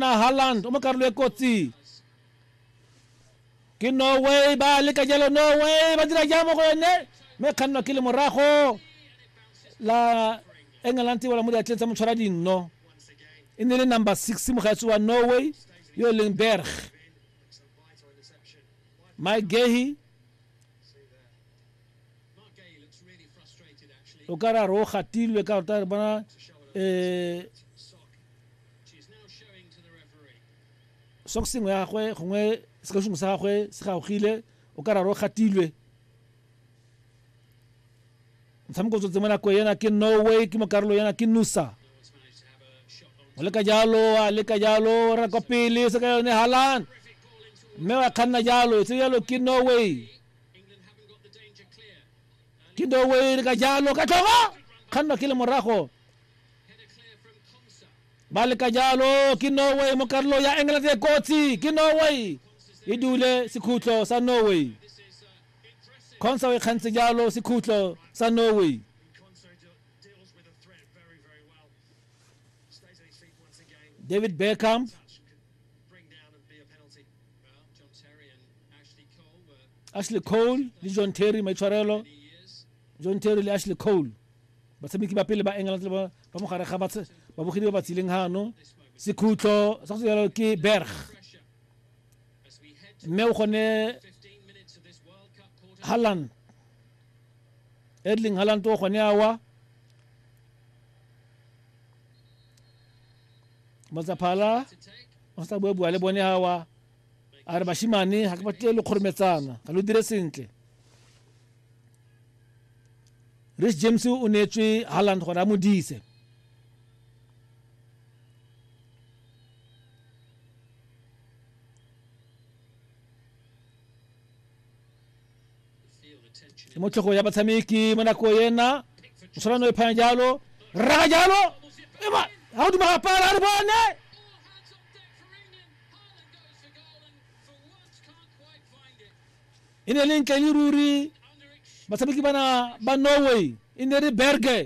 na Haaland o mo karolo e kotsi ke norway ba leka jalo norway ba dira jang mo go yone mme kgannwa ke le morago la england wala mo diatleng tsa motshwara dinno e ne le number six mogatsi wa norway yo e leng berg mike gehi o ka ra ro gatilwe ka rota re bona um sokseng ya gagwe gongwe sekashungu sa gagwe se gaogile o ka raro gatilwe motshameko tsotse mo nako ena ke norway ke mo karolo ena ke nusa o leka jalo a leka jalo ra kwa pele se ka yone halan mme wa kganna jalo tse jalo ke norway ke norway le ka jalo ka tlhogo kganna ke le morago ba leka jalo ke norway mo karolo ya england e kotsi ke norway e dule sekhutlo sa norway consa o e kgantse jalo sekhutlo sa norway david beckham ashley cole le john terry maitshwarelo john terry le ashley cole Batshameki ba pele ba England ba mo gare ga babogedi ba ba tsileng gano sekhutlo sa go jalo ke Berg mme o gone Haaland Erling Haaland o gone awa Matsaphala o sa bua bua le bone awa a re bashimane ga ke batle lo kgorometsana ga lo dire sentle rich james o neetswe halland gore a mo dise ke mo tlhogo ya batshameki mo nako ena o tshwana no e phanya jalo rraga jalo ema ga o duma gapala a re bone e ne le ntle le ruri batshameki bana ba norway e ne re berge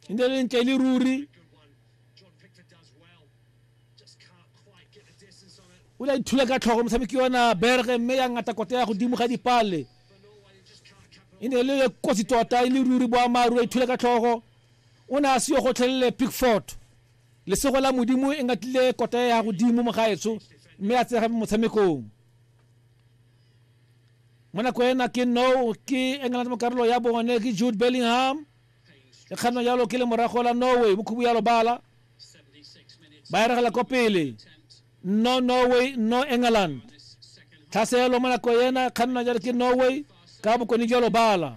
e ne le ntle le ruri o la ithula ka tlhogo motshameki yona berge mme ya ngata kote ya godimo ga dipale e ne le kotsi tota e le ruri boamaru a ithula ka tlhogo O ne a se yo gotlhelele Pickford. Lesego la Modimo e ngatlile kota ya godimo mogaetsho mme a tsega motshamekong. Mo nako ena ke no ke England mo karolo ya bone ke Jude Bellingham. E kganwa jalo ke le morago la Norway mo khubu ya lobala. Ba eregela kwa pele. no norway no england tlhaselo mo nako ena kganna jale ke norway ka bokone jalo bala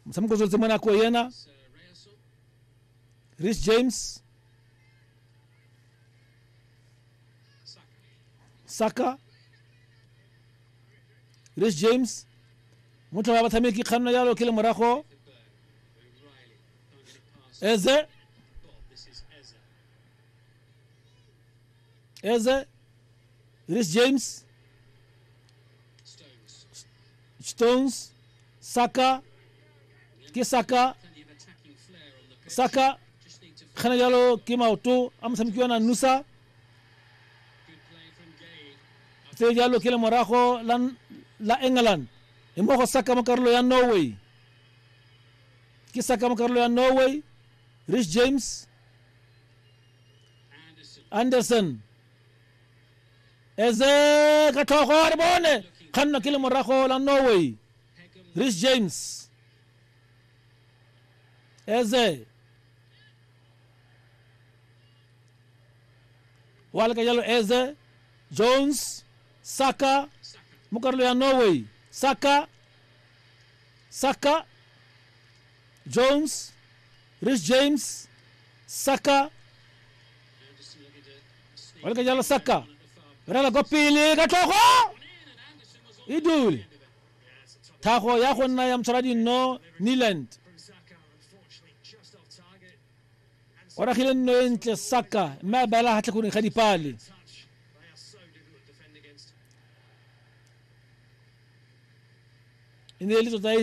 motshameko tswetse mo nako ena rich james saka rich james motho wa batshameki kganna jalo ke le morago eze eze Reece James Stones Saka ke Saka Saka kgana jalo ke maoto a motshameki wa nanusa tse jalo ke le morago la england e mo go saka mo karolo ya norway Ke sa ka mo karolo ya Norway, Rich James, Anderson. Eze ka tlhogo re bone kganno ke le morago la Norway. Rich James. Eze. Wa leka jalo Eze. Jones. Saka mo karolo ya Norway. Saka Saka, Jones, Rich James, Saka. Wala ka jalo Saka. Rela kwa pele ka tlhogo. E dule. Thago ya go nna ya motshwara dinno Niland. o ragile nno e ntle saka mme a beela ga tlhatlhakong ga dipale e ne e le tota e